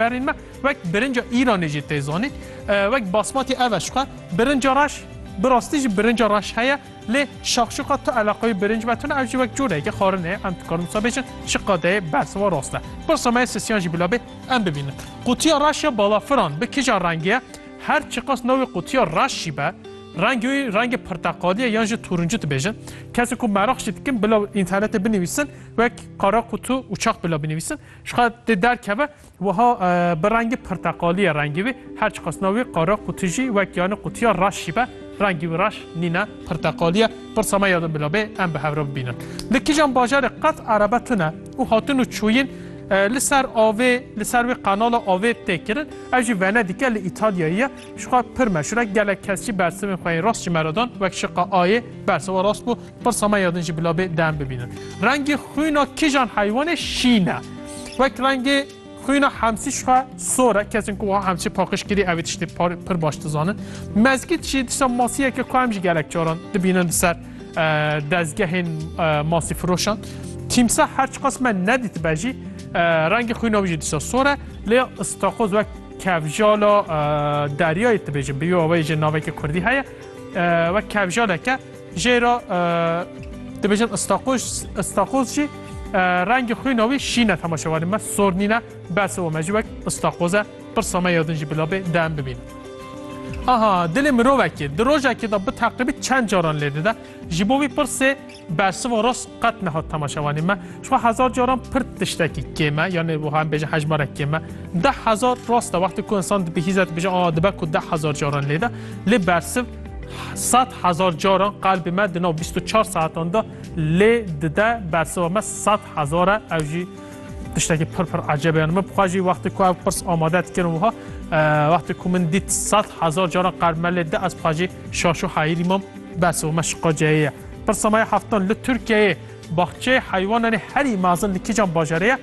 Berên me wek birinca Îranê jî tê zanîn. Wek basmatî ev e jixwe birinca reş bi rastî jî birinca reş heye lê şaxşuqa tu eleqeyê birinc ve tune ev jî wek coreyeke xarin e em dikarin wisa bêjin ji qadeyê bersiva rast e. Pirsa me ye sisiyan jî bila bê em bibînin. Qutiya reş ya balafiran bi kija rengê ye? Her çiqas navê qutiya reş jî be rengê wî rengê pirteqalî ye yan jî turuncu dibêjin. Kesên ku meraq jî dikin bila înternetê binivîsin wek qara qutu û çax bila binivîsin. Jixwe tê derkeve wiha bi rengê pirteqalî ye rengî wî, her çiqas nav wî qara qûtî jî wek yanî qûtiya reş jî be rengî wî reş nîne pirteqalî ye. Pirsa me ya din bila bê em bi hev re bibînin. Li kîjan bajarê qet erebe tune û hatin û çûyîn li ser avê li ser wê qenala avê tê kirin. Ev jî Venedîke li Îtalyayê ye. Şiqa pir me şirek gelek kes jî bersivên xwe yên rast ji me re dan wek şiqa ayê bersa we rast bû pirsa me ya din jî bila bê dem bibînin. Rengê xwîna kijan heywanê şîn e. Wek rengê xwîna hemsî şiqa sor e kesên ku wiha hemsî paqiş kirî ev ê tiştê pir baş dizanin. Mezgît jî dişa masiyeke ku em jî gelek caran dibînin li ser dezgehên masî firoşan. Tîmsa her çiqas me nedîtibe jî rengê xwîna wî jî dişa sor e lê istakoz wek Kevjala deryayê dibêjin bi wê jê naveke kurdî heye wek kevjaleke jê re dibêjin istaqoz istaqoz jî rengê xwîna wî şîn e temaşewarê me sor nîne bes û me jî wek istaqoz e pirsa me ya din jî bila bê dem bibîn. Aha dilê mirovekê di rojekê de bi teqribî çend caran lê dide ji bo wî pirsê Bersiva rast qet nehat temaşevanê me. Ji xwe hezar caran pir tiştekî kêm e yanê wiha em bêjin hejmarek kêm e. Deh hezar rast e wextê ku insan dibihîze dibêje aa dibe ku deh hezar caran lê de. Lê bersiv sed hezar caran qelbê me di nav bîst û çar saetan de lê dide. Bersiva me sed hezar e ew jî tiştekî pir pir eceb e. Yanê min bi xwe jî wextê ku ev pirs amade dikirin wiha wextê ku min dît sed hezar caran qelb me lê di ez bi xwe jî şaş û heyîrî mam. Bersiva me şiqaceyê ye. Pirsa me ya heftan li Tirkiyeyê baxçeyê heywanan ê herî mezin li kîjan bajarê ye?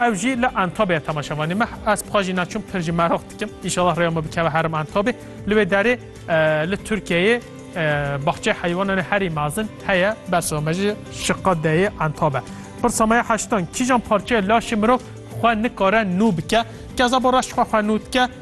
Ew jî li Entabê ye temaşa vanê me. Ez pixwa jî naçûm pir jî meraq dikim. Înşallah rêya me bikeve herim Entabê. Li wê derê li Tirkiyeyê baxçeyê heywanan ê herî mezin heye bersiva me jî Şiqa deyê Entab e. Pirsa me ya heştan kîjan parçeyê laşê mirov xwe nikare nû bike? Kezebo reş xwe xwe nû dike.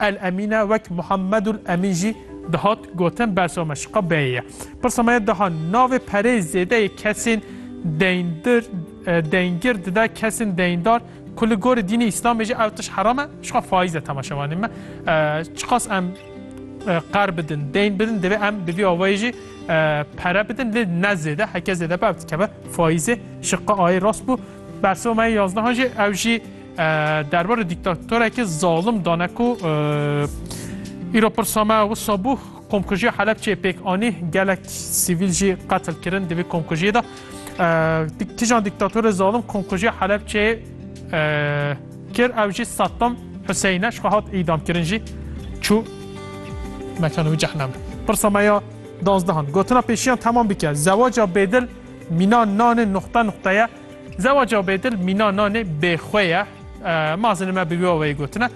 El Emîne wek Muhammedul Emîn jî dihat gotin bersa me şiqa beyê ye. Pirsa me ye daha navê pereyê zêde yê kesên deyndir deyngir dide kesên deyndar ku li gorî dînê îslamê jî ew tişt heram e şiqa faiz e temaşevanê me çiqas em qer bidin deyn bidin divê em bi vî awayê jî pere bidin lê ne zêde heke zêde be ev dikeve faizê şiqa ayê rast bû bersa me yazdehajê ew jî Derbarê dîktatorekî zalim dane ku îro pirsa me wisa bû komkujiya Helepçeyê pêk anî gelek sivîl jî qetil kirin di vê komkujiyê de. Kîjan dîktatorê zalim komkujiya Helepçeyê kir ew jî Saddam Huseyîn e ji xwe hat îdam kirin jî çû mekana wî cehneme. Pirsa me ya danzdehan gotina pêşiyan temam bike zewaca bêdil mîna nanê nuxte nuxteye. Zewaca bêdil mîna nanê bêxwe ye. Mazin me bi wî aweyê gotine.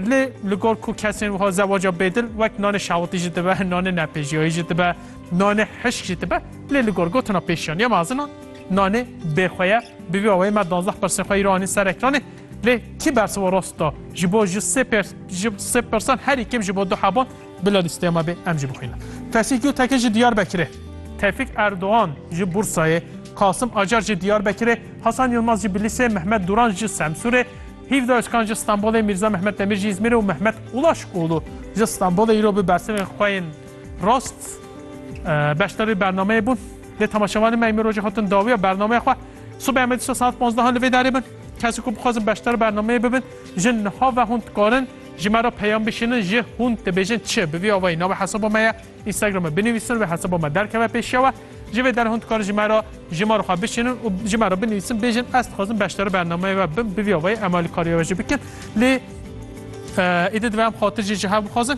Lê li gor ku kesên wiha zewaca bêdil wek nanê şawitî jî dibe, nanê nepêjiyayî jî dibe, nanê hişk jî dibe. Lê li gor gotina pêşiyaniya mazinan nanê bêxwe ye. Bi vî aweyê me duwazdeh pirsên xwe îro anîn ser ekranê. Lê kî bersiva rast da? Ji bo ji sê pêrs ji sê pirsan herî kêm ji bo du heban. Bila lîsteya me bê em jî bixwînin. Tevfîk Gultekin ji Diyarbekirê. Tevfîk Erdogan ji Bursayê, Kasim Acar ji Diyarbekirê, Hasan Yilmaz ji Bilîsê, Mehmet Duran ji Semsûrê, Hîvda Ozkan ji Stenbolê, Mîrza Mehmet Demir ji Îzmîrê û Mehmet Ulaşoğlu ji Stenbolê îro bi bersivên xwe yên rast beşdarî bernameyê bûn. Lê temaşevanên me îmrojê hatin dawiya bernameya xwe. Sibê em ê dişta saet panzdehan li vê derê bin. Kesên ku bixwazin beşdar bernameyê bibin, ji niha ve hûn dikarin. Ji me re peyam bişînin ji hûn dibêjin çi? Bi vî avayî navê hesaba me ye Instagramê binivîsin wê hesaba me derkeve pêşiya we. Ji vê derê hûn dikarin ji me re ji me re xwe bişînin û ji me re binivîsin bêjin ez dixwazim beşdara bernameyê we bim bi vî avayî em alîkariya we jî bikin lê êdî divê em xatir jî ji hev bixwazin.